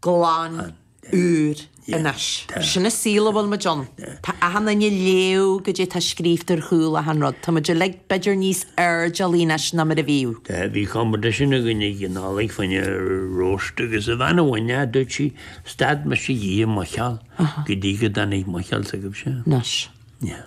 glan, úr, anois. Sin a saol a bhfuil muid ann. Tá achan éinne ag léamh go dtí atá scríofta ar chúl achan rud. Tá muid uilig b'fheidir níos airdeallaí anois ná mar a bhíodh. Bhí competition againn ag an Nollaig fá choinne roast agus an bhean a bhain é, dúirt sí, stad mise de i mo sheal go dtí go dtáinig mo sheal, s'agaibhse? Anois. Yeah.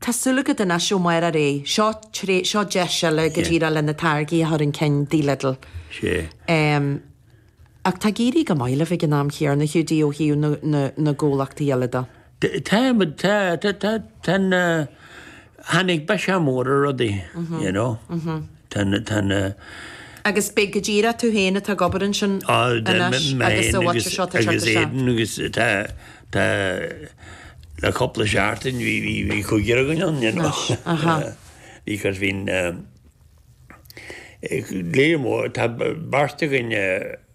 Tá súil agat anois, ó mar a déarfá, tar éis seo deis eile go díreach le na táirgí a chur chun cinn go dtí Lidl. Sea. Em, ach tá ag éirí go maith libh ag an am chéanna, Hiúdaí, ó thaobh na, na, na gcomhlachtaí eile de. Tá, but tá, tá, tá, tá na, tháinig biseach mór ar rudaí, you know. Tá na. Agus beidh go díreach tú féin atá ag obair ansin anois agus sa bhfaighteoir seo tá siad anseo. Agus Aidan agus tá, tá, le cúpla seachtain bhí, bhí, bhí cúigear againn ann, you know. Aha. Because bhí'n, eh, léar mór, tá beirt againn, eh,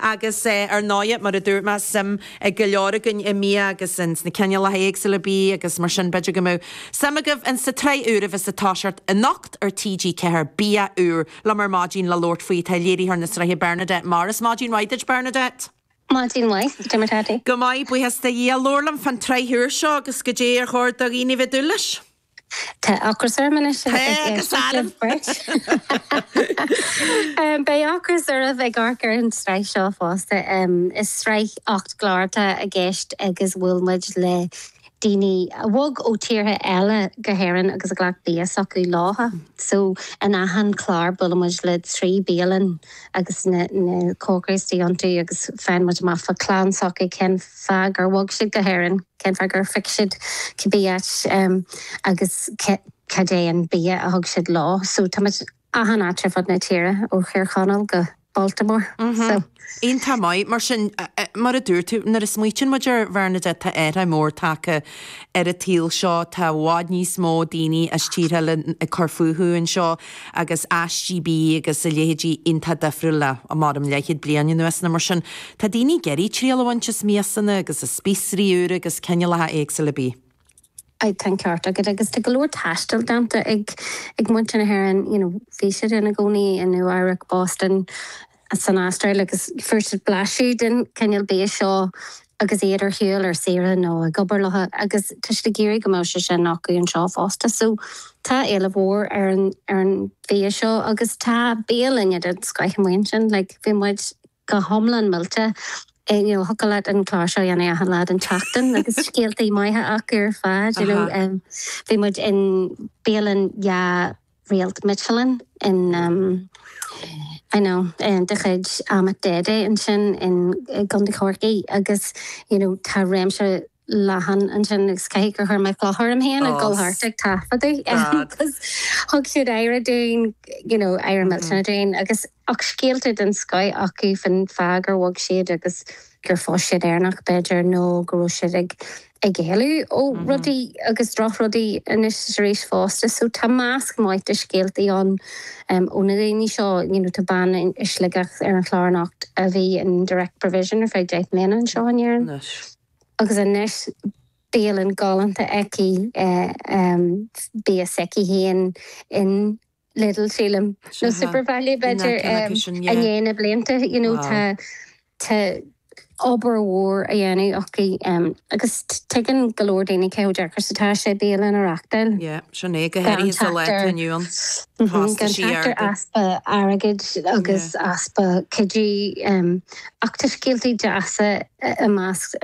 Agus ar ndóighe, mar a dúirt mé, suim ag go leor againn i mbia agus ins na cineálacha éagsúla bia agus mar sin, b'fhéidir go mbeadh suim agaibh ins sa tsraith úr a bheas ag toiseacht anocht ar TG4, Bia Úr, liom ar maidin le labhairt faoi atá ag léiritheoir na sraithe, Bernadette Morris. Maidin mhaith duit, Bernadette. Maidin mhaith, a Jim. Go maith, buíochas le Dia. Labhair liom fán tsraith úr seo agus goidé ar chóir do dhaoine bheith ag dúil leis. Tá ocras orm anois, a deir sibh beirt. Beidh ocras oraibh ag amharc ar an tsraith seo fosta. Is sraith ocht gclár atá i gceist agus bhuail muid le daoine a bhog ó tíortha eile go hÉirinn agus a ghlac bia s'acu leofa. So in achan chlár buailimid le trí bialann. agus na cócairí atá iontu agus faigheann muid amach fá chlann s'acu cén fáth gur bhog siad go hÉirinn, cén fáth gur phioc siad cibé áit agus cad é an bia a thug siad leo. So tá muid achan áit ar fud na tíre ó Thír Chonaill go Baltimore. So. Iontach maith. Mar sin, mar a dúirt tú, nuair a smaoitíonn muid air, a Bhernadette tá athrú mór tagtha ar an tsaol seo, tá i bhfad níos mó daoine as tíortha eile ag cur fúthu anseo, agus is é bia agus a leithéidí iontach difriúil le mar a bhí leathchéad bliain anuas nó mar sin. Tá daoine ag iarraidh triail a bhaint as miasanna agus as spíosraí úra agus cineálacha éagsúla bídh. Aye, tá an ceart agat. Agus tá go leor taistil déanta ag muintir na hÉireann, you know, bhí siad ann i gcónaí, i Nua Eabhrac, Boston, san Astráil agus fuair siad blaiseadh den chineál bia seo agus iad ar shiúl ar saoire nó ag obair leofa agus tá siad ag iarraidh go mbeadh sé sin acu anseo fosta. So tá éileamh mór ar an ar an bhia seo agus tá bialanna den scoith amuigh ansin. Like bhí muid go hiomlán millte you know thiocfadh leat an clár seo a dhéanamh achan lá den tseachtain agus scéaltaí maithe acu ar fad you know. Bhí muid in bialann dhá. Réalt Michelin in you know de chuid Ahmet Dede ansin in i gContae Chorcaí agus you know tá réimse leathan ansin agus caithfidh gur chuir mé cloch orm féin ag dul thart ag taifeadadh agus thug siad aire dúinn you know aire millteanach dúinn agus Ach scéalta den scoith acu fán fáth gur bhog siad agus gur phós siad Éireannach, b'fhéidir, nó go raibh siad ag ag éalú ó rudaí agus drochrudaí anois is arís fosta. So tá measc maith de scéaltaí ann ó na daoine seo, you know, tá bean i Sligeach ar an chlár anocht a bhí in Direct Provision ar feadh deich mbliana anseo in Éirinn agus anois bialann galánta aici, bia s'aici féin in. Lidl, sílim. Nó SuperValu, b'fhéidir, i ndiaidh na blianta. You know, tá, tá obair mhór á dhéanamh acu agus tuigeann go leor daoine cé chomh deacair is atá sé bialann a reachtáil. Yeah, sin é, go háirithe sa lá atá inniu ann. Gan trácht ar easpa airgid agus easpa cuidithe. Ach tá scéaltaí deasa i measc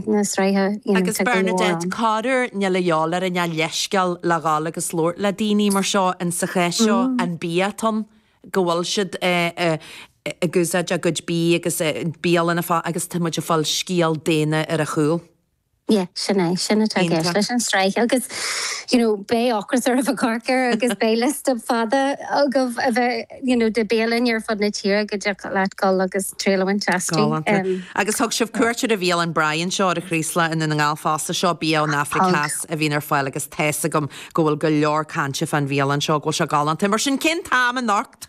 na sraithe, you know, Agus tá go leor Bernadette, ann. corruair níl a dhíobháil orainn ach leithscéal le dhul agus labhairt le daoine mar seo and sa chás seo an bia atá ann go bhfuil siad ag úsáid a gcuid bídh agus bialann ar fáil agus tá muid ag fáil scéal daonna ar a chúl. Yeah, sin é. Sin atá i gceist leis an sraith agus you know beidh ocras oraibh ag amharc air agus beidh liosta fada agaibh a bheith you know de bhialann ar fud na tíre go dtiocfadh leat dul agus triail a bhaint astu. Galánta. Agus thug sibh cuairt ar an bhialann Braai anseo ar an Chraoslach i nDún na nGall fosta, seo bia ón Afraic Theas a bhíonn ar fáil agus tá's agam go bhfuil go leor cainte fán bhialann seo, go bhfuil sé galánta. Mar sin cén t-am anocht?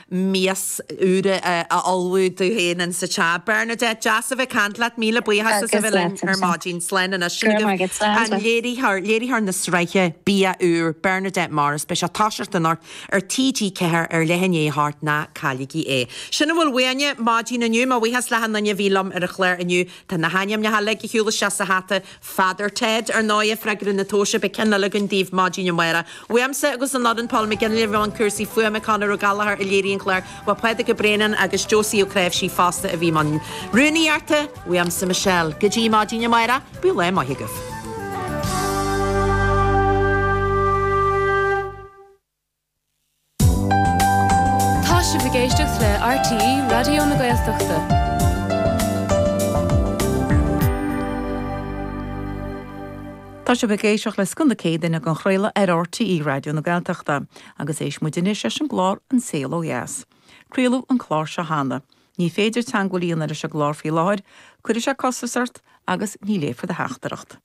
mias úr a ullmhú di féin in sa teach. Bernadette, Deas a bheith caint leat. Míle buíochas as a bheith linn ar maidin. Slán anois. Sin agaibh an léiritheoir, léiritheoir na sraithe Bia Úr, Bernadette Morris. Beidh sé ag toiseacht anocht ar TG4 ar leath i ndiaidh a hocht, ná cailligí é. Sin a bhfuil uainne maidin inniu. Mo bhuíochas le hachan nduine a bhí liom ar an chlár inniu. Tá na hainmneacha uilig ag dul isteach sa hata Father Ted, ar ndóighe, freagra na tomhaise, beidh ceann eile againn daoibh maidin amárach. Uaimse agus ón fhoireann, Paul McGinley i mbun cúrsaí fuaime, Conor Ó Gallachóir a léirigh an clár, ba é Pádraig Ó Braonáin agus Josie Ó Cnáimhsí fosta a bhí i mbun rúnaíochta. Uaimse Michelle. Go dtí maidin amárach, bíodh lá maith agaibh. Tá sibh ag éisteacht le RTÉ Raidió na Gaeltachta. Tá sibh ag éisteacht le scoth na Céadaoine ag athchraoladh ar RTÉ Raidió na Gaeltachta agus éistfidh muid anois leis an gclár An Saol Ó Dheas. Craoladh an clár seo cheana. Ní féidir teangmháil a dhéanamh leis an gclár faoi láthair, cuirfidh sé costas ort agus ní léifear do theachtaireacht.